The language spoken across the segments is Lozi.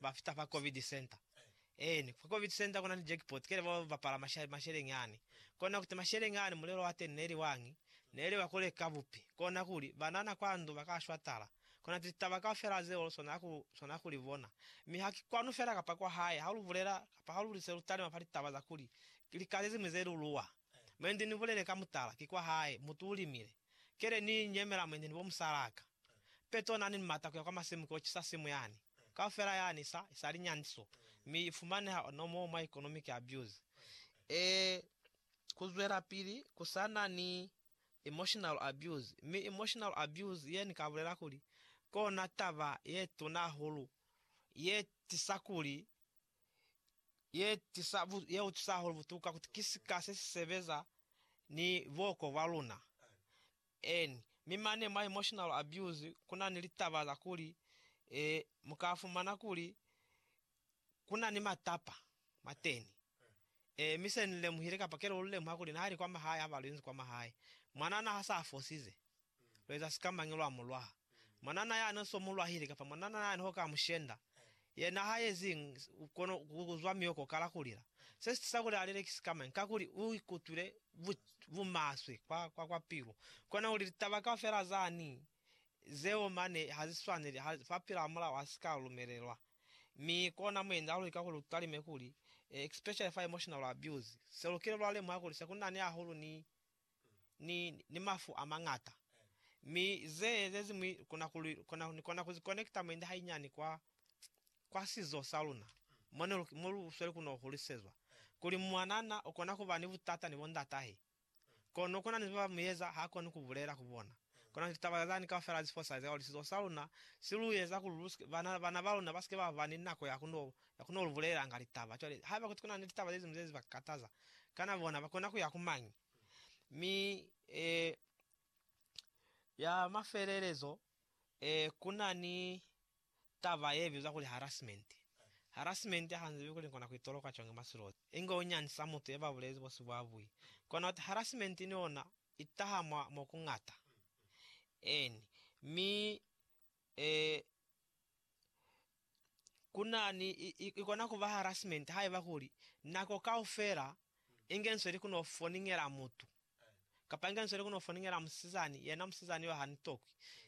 Ba fita fa Covid Center. Eeni, fa Covid Center kuna ni jackpot, kele bao ba pala masha, masheleñi ani. Kona kuti masheleñi ani mulelo wa teni neli wañi, neli wa kuleka bupi. Kona kuli, banana kwa ndu ba ka shwa tala. Kona ti taba kaufela zeo lu swanela ku, swanela ku li bona. Mi ha ki kwanu fela kapa kwa hae, ha lu bulela, kapa ha lu li se lu talima fa litaba za kuli, ki lika ze ziñwi ze lu luwa. Mwendi ni bulele ka mutala, ki kwa hae, mutu u limile. Kele ni nyemela mwendi ni bo musalaka. Petro nani ni mata kuya kwa masimu kuyo cisa simu yani kaufela yani sa sa linyandiso mi ifumaneha ono moo mwa economic abuse. Ee, kuzwelapili kusana ni emotional abuse, mi emotional abuse ye ni ka bulela kuli kona taba ye tuna hahulu ye tisa kuli ye tisa ye utwisa hahulu butuka kuti ki sika se si sebeza ni buoko bwa luna. Eeni, mi mane mwa emotional abuse kunani litaba za kuli mukafumana kuli kunani matapa mwateni. Ee, mi se nilemuhile, kapa kelelo lilemuha kuli nahali kwa mahae haba luinzi kwa mahae, mwanana hasa afosize, lueza sikamañi lwa mulwaha? Mwanana yani so mu lwahile kapa mwanana yani ho ka mu shenda, yena ha yezi kono u kuzwa mioko kala kulila. Se si tisa kuli a lile ki sikamañi? Kakuli u ikutwile bu, bu maswe kwa, kwa, kwa pilu. Kona kuli litaba kaufela zani zeo mane ha zi swaneli, ha, fa pila hamulaho ha si ka lumelelwa. Mi kona mu enda luli kakuli lu talime kuli, especially fa emotional abuse, se lukile lwa lemuha kuli se ku nani hahulu ni ni, ni mafu amañata. Mi ze, zeziñwi kona kuli, kona, ni kona kuzi konekita mwendi hainyani kwa, kwa sizo sa luna, mo ne lu, mo lu sweli kuno hulisezwa, kuli mwanana ukona kuba ni butata ni bondatahe. Kono kuna ni zeba muyeza hakoni kubulela ku bona. Kono ki taba zani kaufela ze fosahaliza kuli sizo sa luna si lu eza kuli lu sike, bana, bana ba luna ba sike ba ba ni nako ya ku no, ya ku no lu bulelanga litaba? Cwale, haiba kuti kuna ni litaba ze ziñwi zezi ba kataza, kana bona ba kona ku ya ku mañi? Mi, eh, ya mafelelezo, eh, kuna ni taba ye bizwa kuli harassment. Harassment ha nzibi kuli nkona ku itoloka cwang mwa silozi, inge u nyandisa mutu ye ba bulezi bo si bwa bui. Kona uti harassment ni ona I taha mwa mo ku ñata. Eeni. Mi, ee, ku na ni, i, i, i kona ku ba harassment haiba kuli nako kaufela i ngenisweli ku no foningela mutu, kapa i ngenisweli ku no foningela musizani, yena musizani yo ha ni tokwi.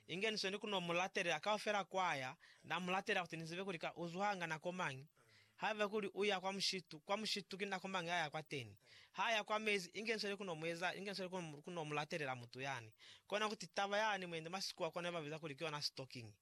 I ngenisweli ku no mu latelela kaufela kwaya, na mu latelela kuti ni zibe kuli ka u zuhanga nako mañi. Haiba kuli uya kwa mushitu, kwa mushitu ki nako mañi aya kwa teni? Ha ya kwa mezi, inge nsweli kuno mueza, inge nsweli kuno, kuno mulatelela mutu yani. Kona kuti taba yani mwende mwa Sikhuwa kona ba biza kuli ki yona stalking.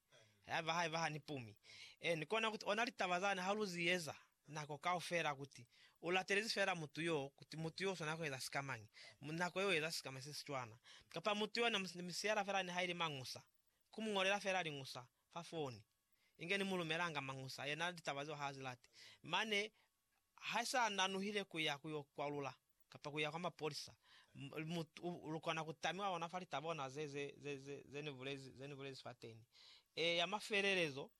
Haiba, haiba ha ni pumi. Eeni, kona kuti ona litaba zani ha lu zi eza nako kaufela, kuti u latelezi feela mutu yo, kuti mutu yo u swanela kueza sikamañi, nako ye u eza sikamañi se si cwana, kapa mutu yo ne mu, ne mu siyela feela nihaili mañusa. ku mu ñolela fela liñusa fa foni, inge ni mu lumelanga mañusa, yena litaba zeo ha a zi lati. Mane ha sa nanuhile ku ya ku yo kwalula kapa ku ya kwa mapolisa, mu, u, lu kona ku tamiwa ona fa litaba ona ze, ze, ze, ze, ze ni bulezi, ze ni bulezi fateni. E, ya mafelelezo,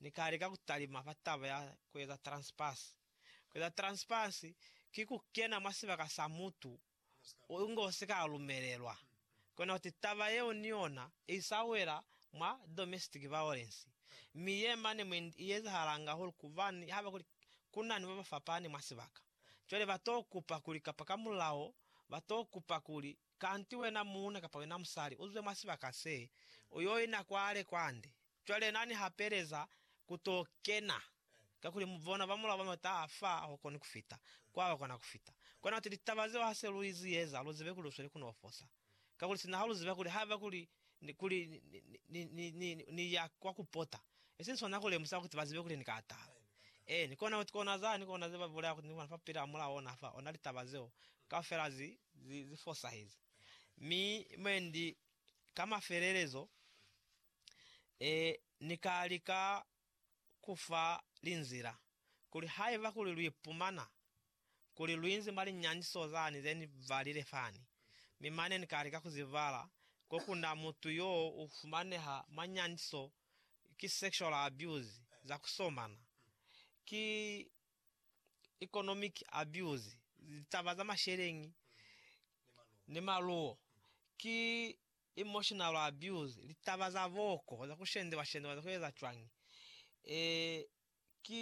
Ni ka lika ku talima fa taba ya ku eza transpass. Ku eza transpass ki ku kena mwa sibaka sa mutu unge si ka lumelelwa. Kona kuti taba yeo ni yona i sa wela mwa domestic violence, mi ye mane mwe i ezahalanga hulu kubani haba kuli ku na ni ba ba fapani mwa sibaka. Cwale ba to kupa kuli kapa ka mulao ba to kupa kuli, Kanti wena muuna kapa wena musali u zwe mwa sibaka se, u yo ina kwale kwande, Cwale Na ni hapeleza ku to kena, kakuli mu bona ba mulao ba mata a fa a hukoni ku fita kwa ba kona ku fita. Kona kuti litaba zeo ha se lu izi eza, lu zibe kuli lu sweli ku no fosa. Kakuli sina ha lu ziba kuli haiba kuli ni, kuli ni, ni, ni, ni, ni, ni ya kwa ku pota, i si swana ku lemusa kuti ba zibe kuli ni ka tala. Eeni, kona kuti kona za, ni kona ze ba bulaya kuti ni bona fa pili a mulao ona fa, ona litaba zeo kaufela zi, zi, zi fosahezi. Mi mwendi ka mafelelezo, Ee, Ni ka lika ku fa linzila, kuli haiba kuli lu ipumana kuli lu inzi mwa linyaniso zani ze ni balile fani, mi mane ni ka lika ku zi bala, ko ku na mutu yo u fumaneha mwa nyaniso, ki sexual abuse, za ku somana, ki economic abuse, litaba za masheleñi ni maluwo, ki Emotional abuse, litaba za boko, za ku shendewa-shendewa, za ku eza cwañi, ee, ki.